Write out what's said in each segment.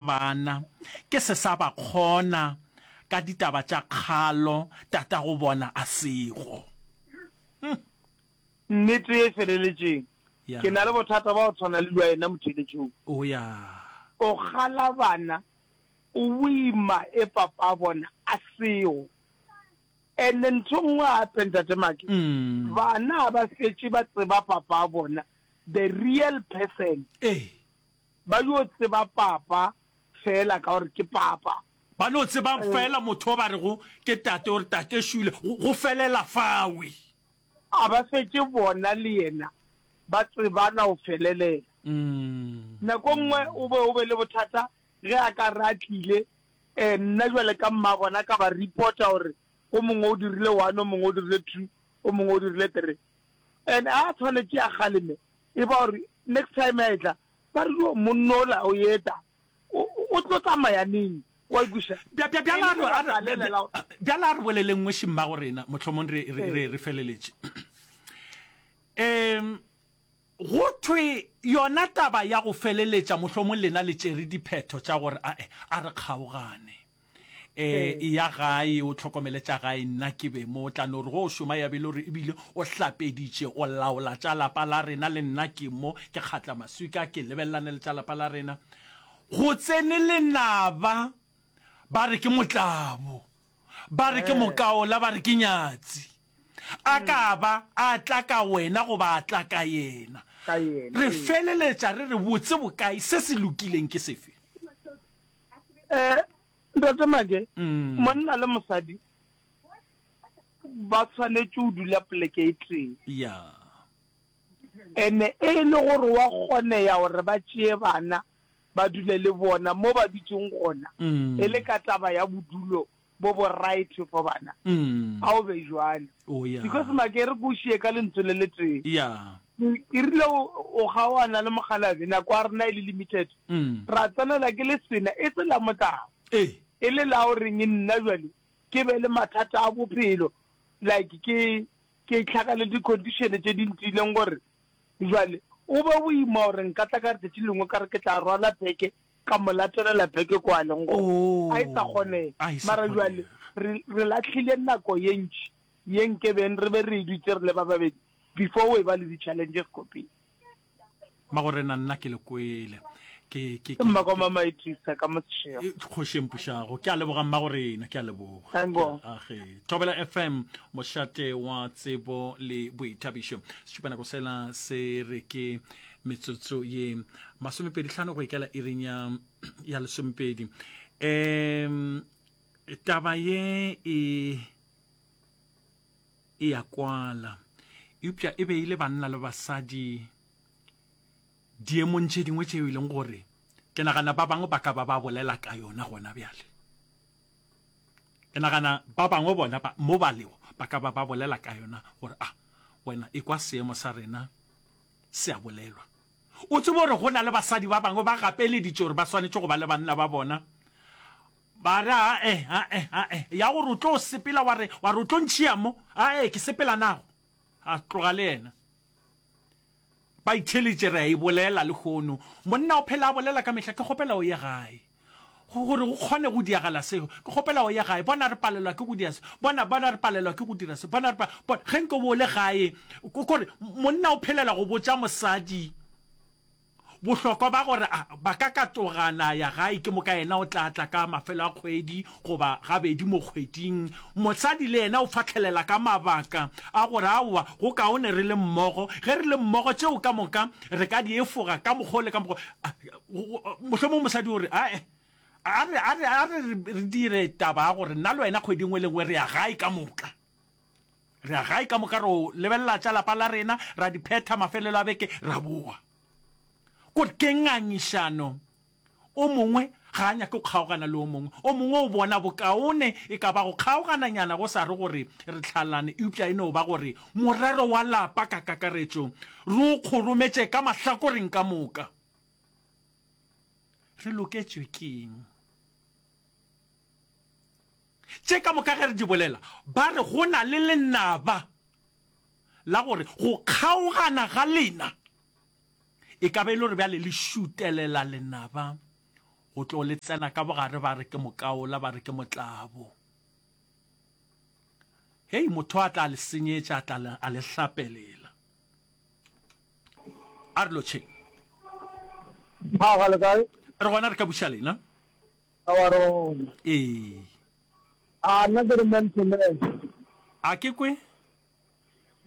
Bana, ke se sa ba kgona ka ditaba tša kgalo tatago bona a sego. Huh. Nnete ye e feleletšeng. Ya. Ke na le bothata ba go tshwana le lwa ena motheletšong. O ya. O kgala bana, o boima e papa bona a sego. And ntho nngwe gape Ntate Make, bana ga ba fetše ba tseba papa bona, the real person. Ee. Ba yo tseba Papa feela ka gore ke Papa. Ba no tseba feela motho yo ba rego ke Tate gore Tate šuile, go felela fawe. A ba fetše bona le yena ba tsebana go felelela. Nako nngwe o be o be le bothata ge a ka re a tlile, nna bjale ka mmabona ka ba reporta gore o mongwe o dirile one, o mongwe o dirile two, o mongwe o dirile three. And a tshwanetše a kgaleme E ba gore next time ya etla ba re yo monno ola o eta o o tlo tsamaya neng wa ikwisha Bja- bja- bjala re- a re- bja- bja- bjala a re boleleng nngwe šimmago rena mohlomong re, re, re, re feleletše um go thwe yona taba ya go feleletša mohlomong lena le tšere diphetho tša gore ae a re kgaogane eh e ya gae o tlhokomele tša gae nna ke be mo tla no re go o šoma ya bele gore ebile o hlapeditše o laola tša lapa la rena le nna ke mo ke kgatla maswika ke lebelelane le tša lapa la rena go tsene lenaba ba re ke motlabo ba re ke eh. mokaola ba re ke nyatsi a hmm. ka ba a tla ka wena goba a tla ka yena re feleletša re re botse bokae se se lokileng ke sefe um ntate make mm. monna le mosadi ba tshwanetse o dula poleke e teng ya ene e le gore wa kgone ya gore ba tšee bana ba dule le bona mo ba dutseng gona mm. e le ka taba ya bodulo bo bo right for bana mm. ga o be jwale oh, yeah. because make re ko šie ka lentswe le le tee yeah. e rile o gaoana le mogalabe nako a rena e le limited mm. ra tsenela ke le sena e se la motlago eh. e le la o reng e nna jwale ke be le mathata a bophelo like ke ke tlhaka le di-condition tse di ntileng gore jwale o be o ima gore nka tla ka letsatsi lengwe ka re ke tla rwala beke Ka mo latelela beke kwa a leng gona. A e sa kgonega. Mara jwale re, re lahlile nako ye ntši ye nkebeng re be re e dutše re le ba babedi before o eba le di-challenges ko pele. Magorena, nna ke le kwele. Ke, ke, ke. Mma kwa Mama Idrisa ka mo Seshego. E, Kgoši e mpušago. Ke a leboga Mmagorena, ke a leboga. Thank Ke a, God. a ge. Thobela FM, mošate wa tsebo le boithabišo. Setšupanako sela se re ke metsotso ye masomepedi tlhano go ikela iring ya ya lesomepedi um taba ye e e ya kwala eupša e be e le banna le basadi diemong tše dingwe tšeo e leng gore ke nagana ba bangwe ba ka ba ba bolela ka yona gona bjale ke nagana ba bangwe bona mo ba lego ba ka ba ba bolela ka yona gore a ah, wena e kwa seemo sa rena Se a bolelwa. O tsebe gore go na le basadi ba bangwe ba gapeleditše gore ba swanetše go ba le banna ba bona, ba re, Ae, ae, ae, ya gore o tlo sepela, wa re, wa re o tlo ntšhia mo, ae, ke sepela nago. A tloga le yena. Ba itheleditše, re a e bolela lehono. Monna o phela a bolela ka mehla, ke kgopela o ye gae. Go, gore go kgone go diagala seo, ke kgopela o ye gae. Bona, re palelwa ke go dira se. Bona, bona, re palelwa ke go dira se. Bona, re pa, bona, ge nko bo le gae, ko, kore monna o phelela go botša mosadi bohlokwa ba gore a, ba ka ka togana ya gae, ke moka yena o tla tla ka mafelo a kgwedi goba gabedi mo kgweding. Mosadi le yena o fahlelela ka mabaka a gore, aowa, go kaone re le mmogo. Ge re le mmogo, tšeo ka moka re ka di efoga ka mokgwa o le ka mokgwa. mohlomong mosadi o re ae a re a re a re re dire taba ya gore nna le wena kgwedi nngwe le nngwe re ya gae ka moka re ya gae ka moka re o lebelela tša lapa la rena ra di phetha mafelelo a beke ra boa ko ke ngangišano o mongwe ga a nyake go kgaogana le o mongwe o mongwe o bona bokaone e ka ba go kgaogananyana go sa re gore re tlhalane eupša e no ba gore morero wa lapa ka kakaretšo re o kgorometše ka mahlakoreng ka moka re loketšwe keng tše ka moka ge re di bolela ba re go na le lenaba la gore go kgaogana ga lena e ka be e le gore bjale le šutelela lenaba go tlo le tsena ka bogare ba re ke mokaola ba re ke motlabo hei motho a tla le senyetša a tla a le hlapelela a re lotšheng a ga le kae re gona re ka buša lena a wa re gona ee a nna ke re man to man a ke kwe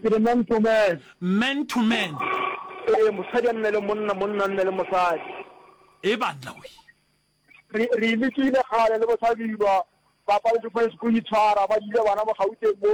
ke re man to man man to man ee mosadi a nne le monna monna a nne le mosadi e banna we re re lekile kgale le bosabilwa ba paletse go go itshwara ba dile bana mo gauteng mo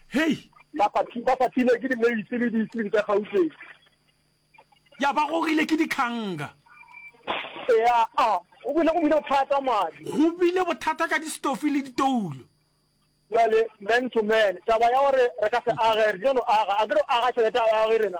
Hei! Ba fathi- ba fathilwe ke dimeisi le diisling tša Gauteng. Ya ba gogile ke dikganga. Ea a, go bile, go bile bothata madi. Go bile bothata ka distofi le ditoulo. Bjale, man to man, taba ya gore re ka se age, re tlile no aga. A ke re o aga tšhelete a o age rena.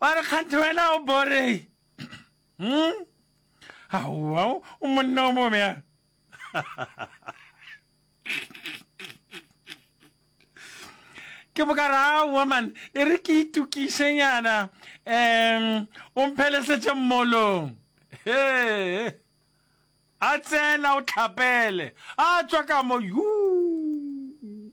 ba re kganthe wena o bore hmm? aowa o monna o mobjang ke bokara aowa man e re ke itukišenyana um o mphelesetše mmolong hee a tsena o tlhapele a tswa ka mo yuu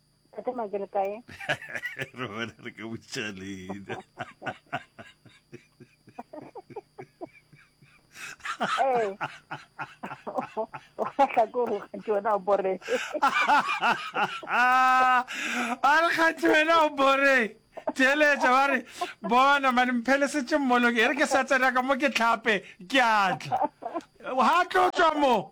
Tate ma ke le kae? Re bona re ka botša leina. Ee. O kgatla ko go kgathe wena o bore. A re kgathe wena o bore. Theeletša ba re bona mane mphelesetse mmoloke e re ke sa tsena ka mo ke tlhape ke atla. Ha tlo tswa mo.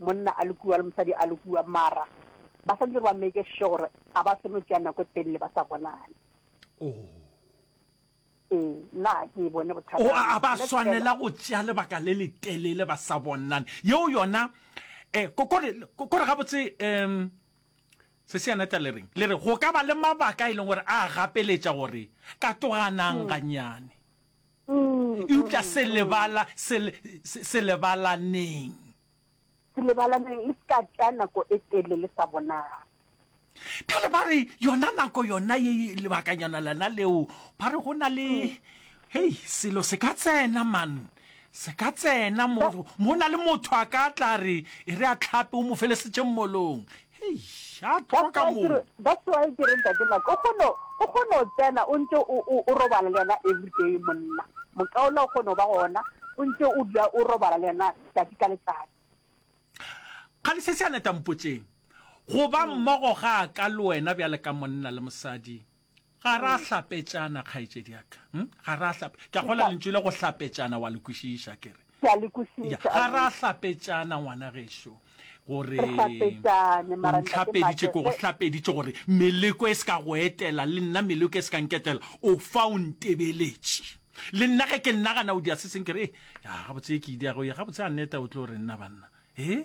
Monna a le kua le mosadi a le kua, mara ba sa ntse ba make sure gore ga ba seno tšea nako e telele ba sa bonane. Oh. Ee, nna ke e bone bothata. Oh, a ba swanela go tšea lebaka le le telele ba sa bonane. Yeo yona eh kokore kokore gabotse um se se yana tla le reng le re go ka ba le mabaka e leng gore a gapeletša gore ka toganang hmm. ganyane Eupša se lebala, se, se, se lebalaneng. Se lebalaneng, le se ka tša nako e tele le sa bonala. Bjale ba re, yona nako yona ye, lebakanyana lena leo, ba re go na le, hei, selo se ka tsena, man, se ka tsena mo, mo na le motho a ka tla re, e re a tlhape, o mo felesetše mmolong. Eish! A tloga moo! That's why ke re ntate Mike o kgona o kgona go tsena o ntse o o o robala le yena everyday monna. Mokaula o kgona go ba gona o ntse o dula o robala le yena tsatsi ka letsatsi. Kgale se se a leta mpotšeng. Go ba mmogo ga ka le wena bjale ka monna le mosadi ga ra hlapetšana kgaetšedi yaka hm? ga ra hlap ke a gola lentšu le go hlapetšana wa le kwešiša ke re ke a le kwešiša ga ra hlapetšana ngwana gešo gore Re hlapetšane, mara ntate ntlhapeditše Mate, ko go ge- hlapeditše gore meleko e se ka go etela le nna meleko e se ka nketela o fa o ntebeletše le nna ge ke nnagana o dia se seng ke re "Eh, ya gabotse e ke ideago ye gabotse a neta o tlo re nna banna e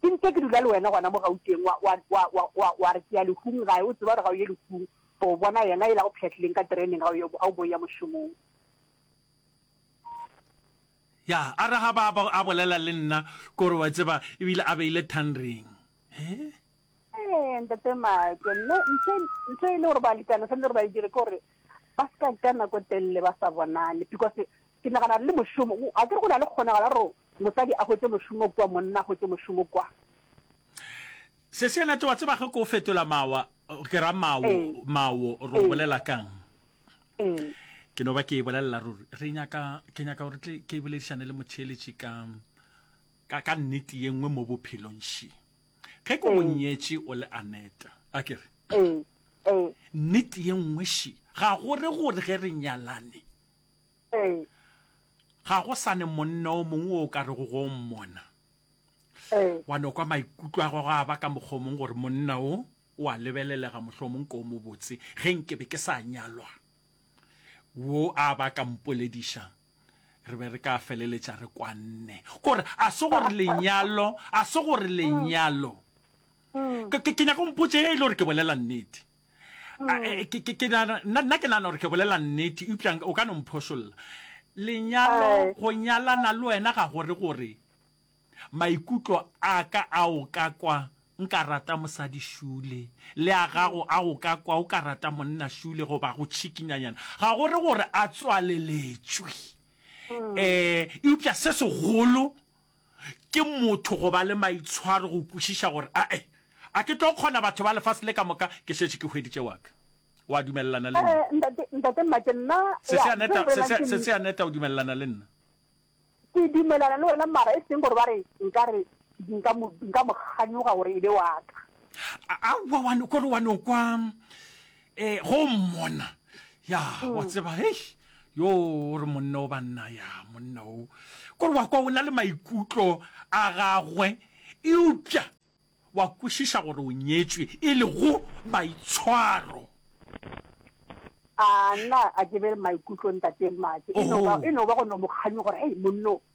Ke ntše ke dula le wena gona mo Gauteng, wa, wa, wa, wa, wa, wa re ke ya lehung gae, o tseba gore ga o ye lehung, o bona yena e la go pšhatlileng ka tereneng ga o ye, ga o boya mošomong. Ya, a re ga ba, ba, a bolela le nna, kore wa tseba, e bile a beile thang ring. He? Ee, Ntate Maake, nna, ntho, ntho e le gore balekane swanetše gore ba e dire ke gore ba se ka ka nako telele ba sa bonane, because Ke nagana re le mošomo, a ke re go na le kgonagalo ya gore mosadi a hwetše mošomo kua, monna a hwetše mošomo kua? Seseenate, wa tseba ge ke o fetola mawa, ke ra mawo, mawo, re o bolela ka'ng? Ke no ba ke e bolelela ruri, re nyaka, ke nyaka gore tle ke boledišane le motheeletši ka, ka, ka nnete ye nngwe mo bophelong. She. Ge ke go nyetše o le Aneta, a ke re, nnete ye nngwe, she, ga go re gore ge re nyalane, Ee. Ga go sa ne monna o mongwe o o ka rego go o mmona Ee. wa no kwa maikutlo a gagwe a ba ka mokgwa o mongwe gore monna o o a lebelelega mohlwa o mongwe ke o mobotse ge nke be ke sa nyalwa wo a ba ka mpolediša re be re ka feleletša re kwanne kore a se gore lenyalo a se gore lenyalo ke ke nyaka o mpotše ge e le gore ke bolela nnete mm. ke ke nana nna ke nana gore ke bolela nnete upša o ka no mphošolla lenyalo go nyalana le wena ga gore gore maikutlo a ka a o ka kwa nka rata mosadi shule le a gago a o ka kwa o ka rata monna shule goba go tšhikinyanyana ga gore gore a tswaleletšwe um mm. eh, eupša se segolo Ke motho go ba le maitshwaro go kwešiša gore a e a ke tlo kgona batho ba lefase le ka moka ke šetše ke hweditše wa ka. O a dumelelana le nna? Ntate, Ntate Mmake, nna, ya, se Seaneta, bolela se, ke se, Seaneta, o dumelelana le nna? Ke dumelana le wena mara e seng gore ba re nka re nka mo nka mo kganyoga gore e be wa ka. A, aowa wa no kore wa no kwa E, go mmona. Ya, wa mm. tseba, hei, yo o re monna o banna, ya, monna o. Kore wa kwa o na le maikutlo a gagwe, eupša wa kwešiša gore o nyetswe e le go maitshwaro a nna a ke be maikutlo ntate mmake e no ba go no mokganyo gore hei monno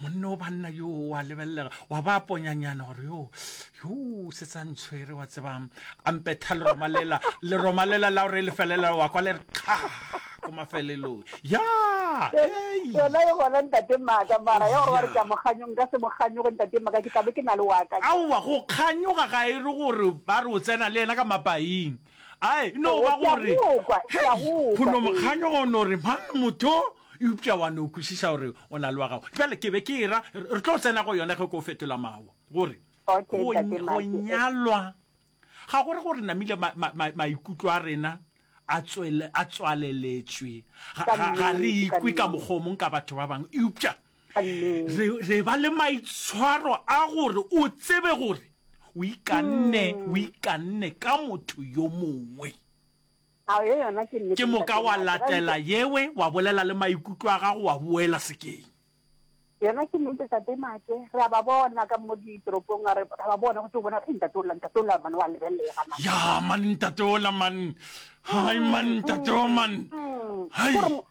monne o banna yo wa lebelelega wa ba ponyanyana gore yo yo se tsa ntshwere wa tsebang a mpetha le romalela le romalela la gore e le felela wa kwa le re kga ko mafelelong ya yona e gona ntate maaka mara ya gore wa re ka mokganyong ka se mokganyogo ntate maaka ke tlabe ke na le waka aowa go kganyoga ga e re gore ba re o tsena le ena ka mapaing A e no ba gore kholomokganyo o no re mang motho, eupša wa no kwešiša gore o na le wa gago. Bjale ke be ke e ra re tlo tsena go yona ge ko fetola mawa gore go nyalwa ga gore gore namile maikutlo a rena a tswaleletšwe ga re ikwe ka mokgomong ka batho ba bangwe eupša re, re ba le maitshwaro a gore o tsebe gore o ikanne o hmm. ikanne ka motho yo mongwe ke moka wa latela yewe wa bolela le maikutlo a gago wa boela sekeng yona ke nnete sa temake re a ba bona ka mo ditoropong a re ba bona go tse bona re ntate ola ntate ola mane wa lebelele ga mane ya mane ntate ola mane hai mane ntate o mane hai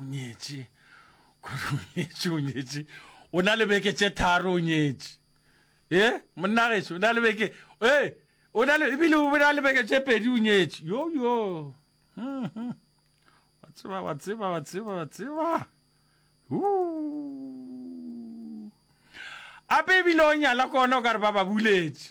o nyetše kore o nyetše o nyetše o na le beke tše tharo o nyetše e monnageso o na le beke e o na le ebile o na le beke tše pedi o nyetše yo yo hmm, hmm. wa tseba wa tseba wa tseba wa tseba ape ebile o nyala kona o ka re ba ba buletše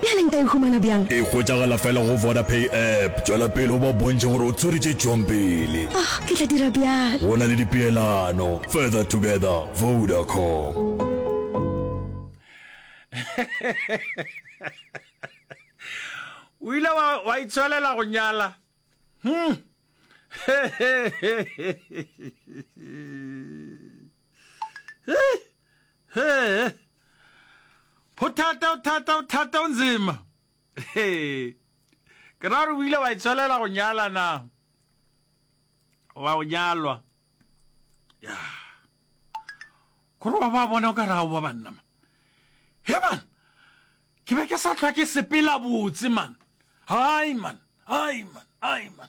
Bjale nka e humana bjang? E hwetšagala fela go Vodapay app. Tšwela pele o ba bontšhe gore o tswere tše tšwang pele. Oh, ke tla dira bjalo. Go na le dipeelano. Further together, Vodacom. O ile wa itshwelela go nyala? Hmm. Hey! Hey! Pothata, pothata, pothata, o nzima. Hey! Ke ra gore o ile wa itswelela go nyala na? Wa go nyalwa. Ya. Kore wa ba bona o ka ra o ba banna ma. He man! Ke be ke sa tlwa ke sepela botse man. Hai man! Hai man! Hai man!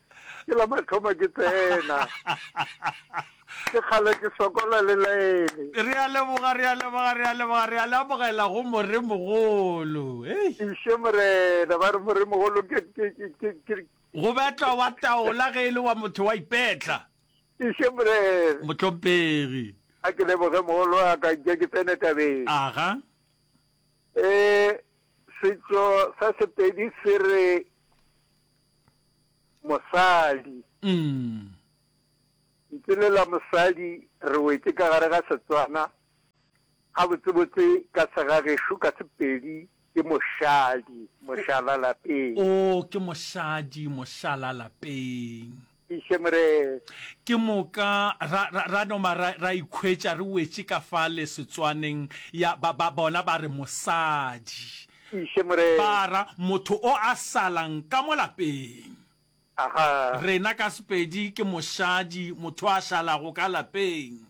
ke la mathomo ke tsena ke kgale ke sokola le laene re a leboga re a leboga re a leboga re a lebogela go moremogolo iše morena ba re moremogolo go betlwa wa taola ge e le wa motho wa ipetla iše morena motlhompegi a ke leboge mogolo wa ka ke ke tsene tabeng aga um setso sa sepedi se re Mosadi. Mm. Ntse le la mosadi re wetse ka gare ga Setswana gabotsebotse ka segagešo ka Sepedi ke moshadi, mošala lapeng. O ke moshadi, mošala lapeng. Tiiše Morena. Ke moka ra, ra, ra noma ra, ra ikhwetša re wetše ka fa lesetswaneng, ya ba, ba bona ba re, Mosadi. Tiiše Morena. Ba ra, Motho o a salang ka mo lapeng. Aha. Rena ka Sepedi ke mošadi, motho a šalago ka lapeng.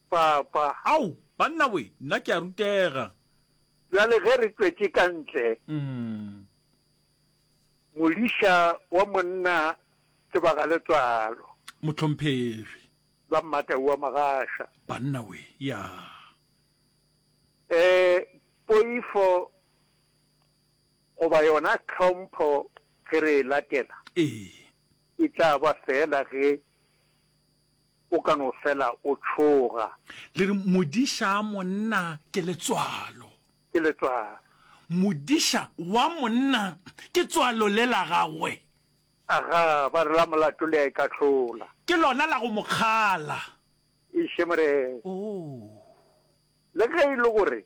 Papa. Ao, banna we, nna ke a rutega. Bjale ge re tšwetše ka ntle. Mm. Modiša wa monna Tsebagaletswalo. Mohlomphegi. Ba Mmatau wa Magasha. Banna we, ya. E, poifo goba yona tlhompho ge re e latela. E. E tla ba feela ge o ka no fela o tšhoga. Le re modiša monna ke letswalo. ke letswalo. Modiša wa monna ke tswalo le la gagwe. Aga, ba re la molato le a e kahlola. Ke lona la go mo kgala. Eiše Morena. Oo. Le ge e le gore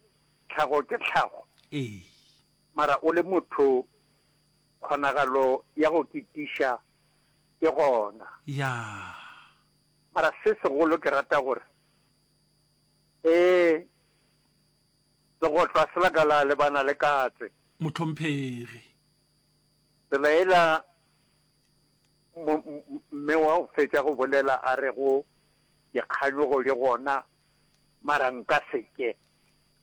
tlhago ke tlhago. Ee. Mara o le motho, kgonagalo ya go ketiša ke gona. Ya. Mara se segolo ke rata gore, ee, Legohlwa se la ka la lebana le katse. Mohlomphegi. Se la ela mme wa go fetša go bolela a re go dikganyogo di gona mara nka seke.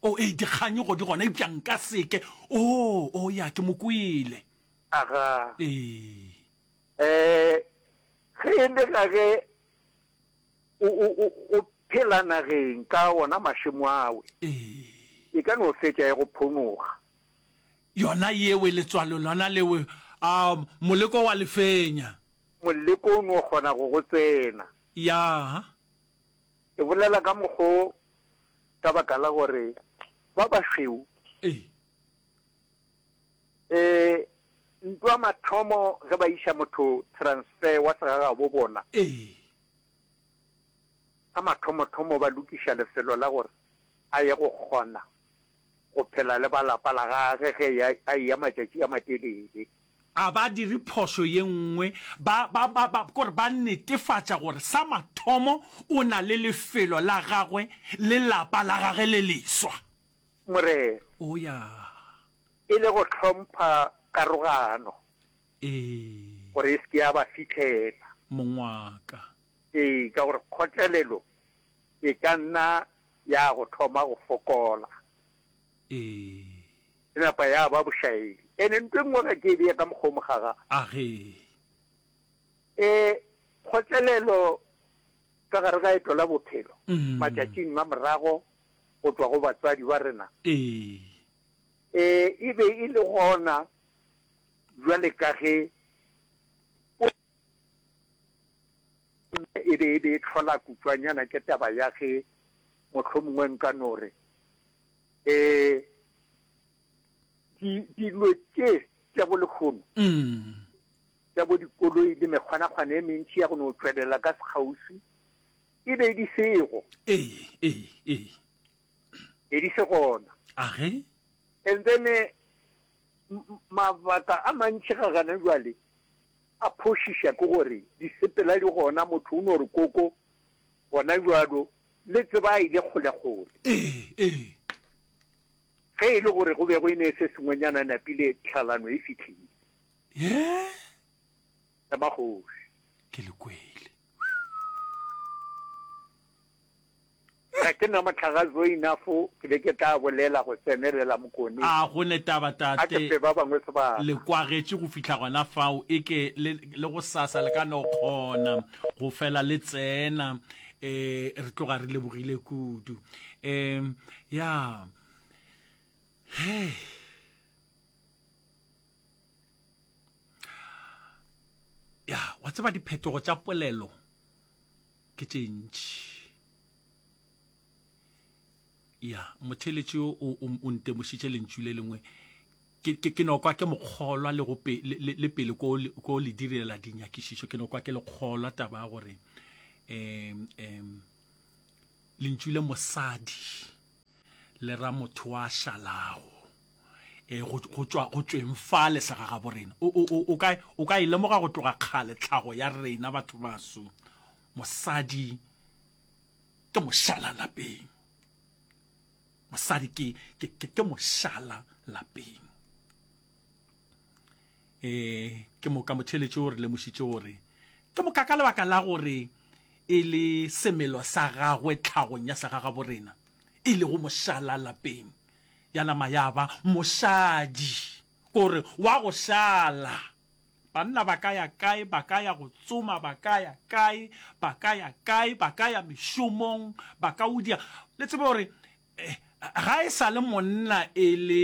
Oh, ee, dikganyogo di gona eupša nka seke. Oh, oh, ya, ke mo kwele. Aga. Ee. Eh, ge e le ga ge. O, o, o, o phela nageng ka ona mašemo awe. Ee. E ka no fetša ya go phonoga. Yona yewe, letswalo lona lewe, a, moleko wa le fenya. Moleko o no kgona go go tsena. Ya. E bolela ka mokgo ka baka la gore ba bašweu. Ee. E ntwa mathomo ge ba iša motho transfer wa segagabo bona. Ee. Sa mathomothomo ba lokiša lefelo la gore a ye go kgona go phela le ba lapa la gage ge ya a ya matšatši a matelele. A ba dire phošo ye nngwe ba ba ba ba kore ba netefatša gore sa mathomo o na le lefelo la gagwe le lapa la gage le leswa. Morero. O ya. E le go hlompha karogano. Ee. Gore e se ke ya ba fihlela. Mongwaka. Ee, ka gore kgotlelelo e ka nna ya go thoma go fokola. Ee. E napa ya ba bošaedi. Ene ntwe nngwe ga ke e bea ka mokgwa o mogaga. A ge. E kgotlelelo ka gare ga eto la bophelo, matšatšing a morago go tšwa go batswadi ba rena? Ee. Ee, e be e le gona bjale ka ge e be e be e tlhola kutšwanyana ke taba ya ge mohlomongwe nka no re um dilo tše tša bo lekgono mm. tša bo dikoloi le mekgwanakgwana e mentši ya go no tšwelela ka sekgausi e be di sego ee ee ee be di se gona age and then eh, m- m- mabaka a mantši ga gana jwale a phošiša ke gore disepela di gona motho o no re koko gona jwalo le tseba a ile kgolekgole ee ee ge e le gore go be go e ne e se sengwenyana napile tlhalano e fitlhile ye ya magoši. Ke le kwele. Ga ke na mohlaga zo inafo ke be ke tla bolela go tsenelela Mokone. A go ne taba tate. A ke fe ba bangwe sebaka. Le kwagetše go fihla gona fao e ke le, le gosasa le ka no kgona go fela le tsena eh, re tloga re lebogile kudu. Eh, ya. Hey. ya wa tseba diphetogo tša polelo ke tše ntši ya motheletši o o ntemošitše lentšu le lengwe ke no kwa ke mokgolwa le go le pele ko ko le direla dinyakišišo ke no kwa ke le kgolwa taba ya gore em em lentšu le mosadi le ra motho wa šalago e go tswa go tsweng fa le sa gaga bo rena o o o ka o ka ilemoga e go tloga kgale tlhago ya rena batho baso mosadi ke moshala lapeng mosadi ke ke ke moshala lapeng E, ke moka motheletši o re lemošitše gore ke moka ka lebaka la gore e le semelo sa gagwe tlhagong ya segagaborena e lego mošala lapeng ya nama ya ba mošadi gore wa go šala banna ba ka ya kae ba ka ya go tsoma ba ka ya kae ba ka ya kae ba ka ya mešomong ba ka udia le tsebe gore eh, ga e sa le monna e le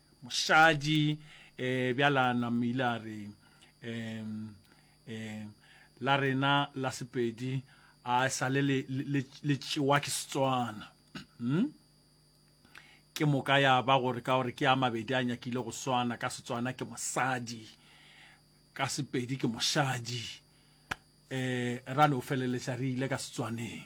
Mošadi, Ee, bjala Nam ile a re, Ee, ee, la rena la Sepedi a e sale le, le, le tšewa ke Setswana. Hm? Ke moka ya ba gore ka gore ke a mabedi a nyakile go swana, ka Setswana ke mosadi, ka Sepedi ke mošadi. Ee, ra no feleletša re ile ka Setswaneng.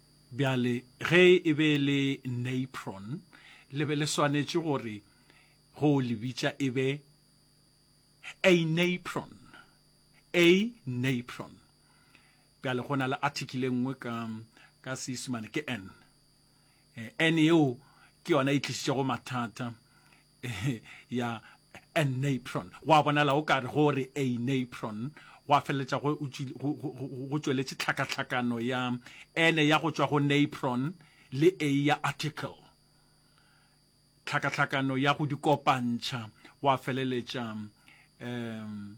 Bjale, ge e be e le Napron, le be le swanetše gore go le bitša e be A napron. A napron. Bjale, go na le article e nngwe ka, ka Seisemane, ke an. An yeo ke yona e tlišitšego mathata. ya anapron wa bonala o kare go re anapron wa feleletša go tšweletše tlhakatlhakano ya ene ya go tšwa go napron le a ya article tlhakatlhakano ya go di kopantšha wa feleletša um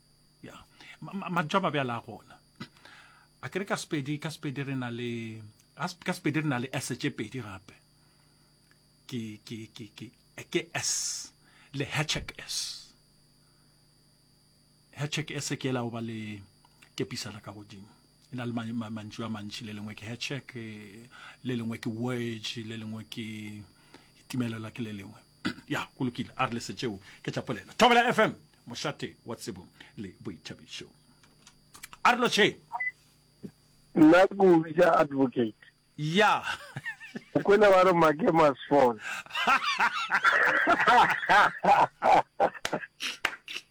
ya mantšu a mabjala a gona a kere ka sepedi ka sepedi re na le ka sepedi re na le s tše pedi gape ke ke ke ke ke s le hatchek s hatchek s ke la ba le kepisana ka godimo e na le mantšu a mantši le lengwe ke hatchek le lengwe ke wedge le lengwe ke timelelwa ke le lengwe Ya, go lokile, a re le se tšeo ke tla polela. Thobela FM, mošate wa tsebo le boithabišo. A re lotšheng. Nna ke o bitša advocate. Ya. o kwele ba re make must fall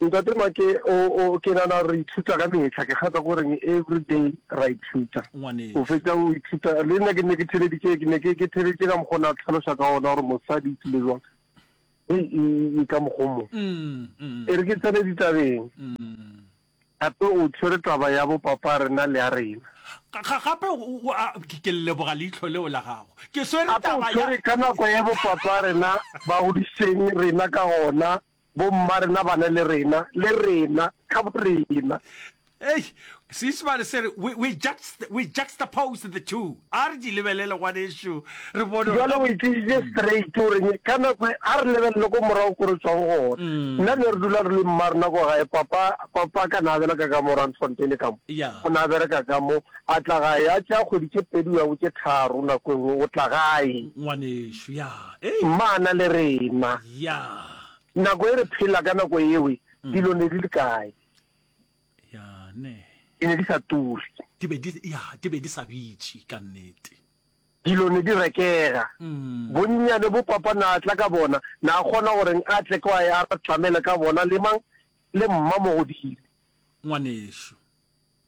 Ntate Make, O, o, ke nana re ithuta ka mehla, ke kgatha go reng everyday ra ithuta. O fetša o ithuta, le nna ke nne ke theleditše, ke ne ke, ke theleditše ka mokgwa o ne a tlhaloša ka ona gore mosadi e tlile jwang. E, e, e ka mokgwa o mo. E re ke tsene ditabeng, gape o tshwere taba ya bo papa rena le ya rena. Ga, gape o, o, a, ke, ke leboga leihlo leo la gago. Ke swere taba ya. Gape o tshwere ka nako ya bo papa rena ba godišitšeng rena ka gona. Bomma rena bana le rena, le rena, ka borena. Eish, Seisemane se re, we, we, juxt, we juxtapose the two. A re di lebelele ngwanešu, re bone gore. Bjale o e tlišitše straight o reng, ka nako e, a re lebelele ko morago ko re tšwang gona. Nna ne re dula re le mma rena ko gae, papa, papa ka na a bereka ka mo Randfontein ka mo. Ya. O na bereka ka mo, a tla gae, a tšea kgwedi tše pedi o ya go tše tharo nako e nngwe, o tla gae. Ngwanešu, ya. Mmana le rena. Nako e re phela ka nako ewe, dilo ne di le kae? Di ne di sa turi. Di be di, ya, di be di sa bitši ka nnete. Dilo ne di rekega. Bonnyane bo Papa na tla ka bona, na kgona go reng a tle kwa a re tlamele ka bona le mang? Le Mma Mogodimo. Ngwanešu.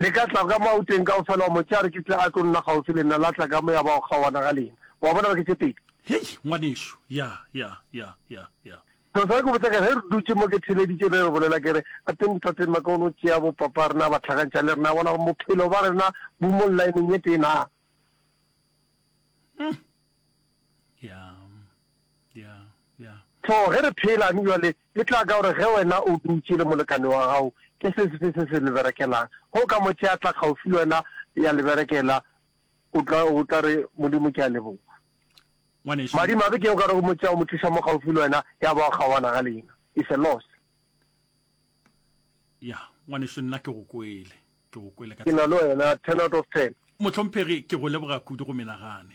Le ka tla ka mo a o teng kaofela wa mo tšea re ke tle a tlo nna kgaufsi le nna, la tla ka mo ya ba o kgaoana ga lena. Wa bona re ke tše pedi. Hei, ngwanešu, ya, ya, ya, ya, ya. Selo sa ge ke botša ke re, ge re dutše mo ke theeleditše be re bolela ke re, Gateng Tate Mac o no tšea bopapa rena ba hlakantšha le rena, bona gore bophelo ba rena bo mo llaeneng ye tee naa. Hum. Ya, ya, ya. Tlhogo, ge re pheelane bjale, E tla ka gore ge wena o dutše le molekane wa gago, ke se sefe se se le berekelang. Ge o ka mo tšea a tla kgaufsi le wena ya le berekela, o tla, o tla re, Modimo, ke a leboga. Ngwanešu. Madimabe ke ge o ka re o mo tšea o mo tliša mo kgaufsi le wena, ya ba o kgaoana ga leina. It's a loss. Ya, ngwanešu, nna ke go kwele. Ke go kwele ka Ke na le wena, ten out of ten. Mohlomphegi, ke go leboga kudu go menagane.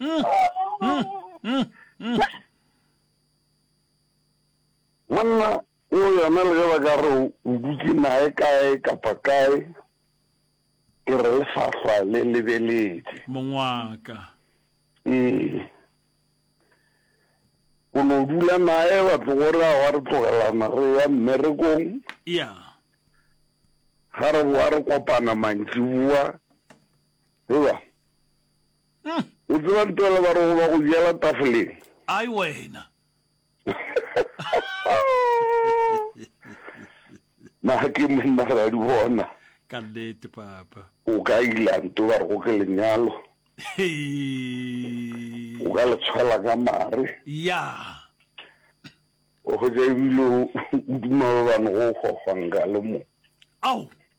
Mm, mm, mm, mm. monna o yona le ge ba ka re o dutse nae kae kapa kae ke re lefahlwa le lebeletse mongwaka ee o no dula nae ba tlogore a wa re tlogelana re ya mmerekong ya ga re boa re kopana mantsiboa Ewa. O tseba ntwela ba re go ba go jela tafoleng. Ai wena. Na ke monna ga di bona. Ka nnete papa. O ka ila nto ba re go ke lenyalo. O ka le tshwela ka mare. Ya. O go ja ebile o duma ba bang go gogwanga le mo. Au.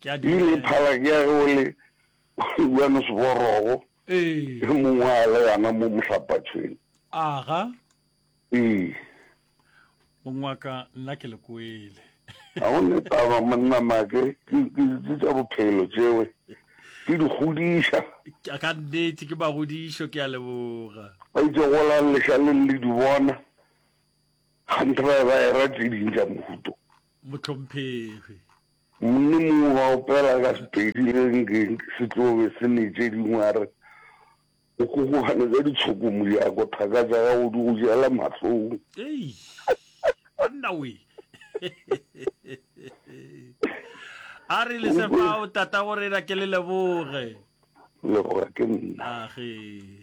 Ke ile e phala ke ya ge o le Johannesborogo e mongwe a le gana mo Mohlapatshweng. Aga. Ee. Mong wa ka nna ke le kwele. Ga go ne taba monna make ke ke ke tsa bophelo tšewe ke di godiša. Ka nnete ke magodišo ke a leboga. Ba itse golang lešaleng le di bona ganthe ba e ba e ra tse ding tsa mohuto. Motlhomphegi. Monna mongwe wa opela ka Sepedi renkeng se tlo be se le tše dingwe a re, O kgokgogane ka ditshoko Mojako, thaka tša gago di go jela mahlong. Eish! Monna we! A re le se fao, Tata go rena ke le leboge. Leboga ke nna. Age.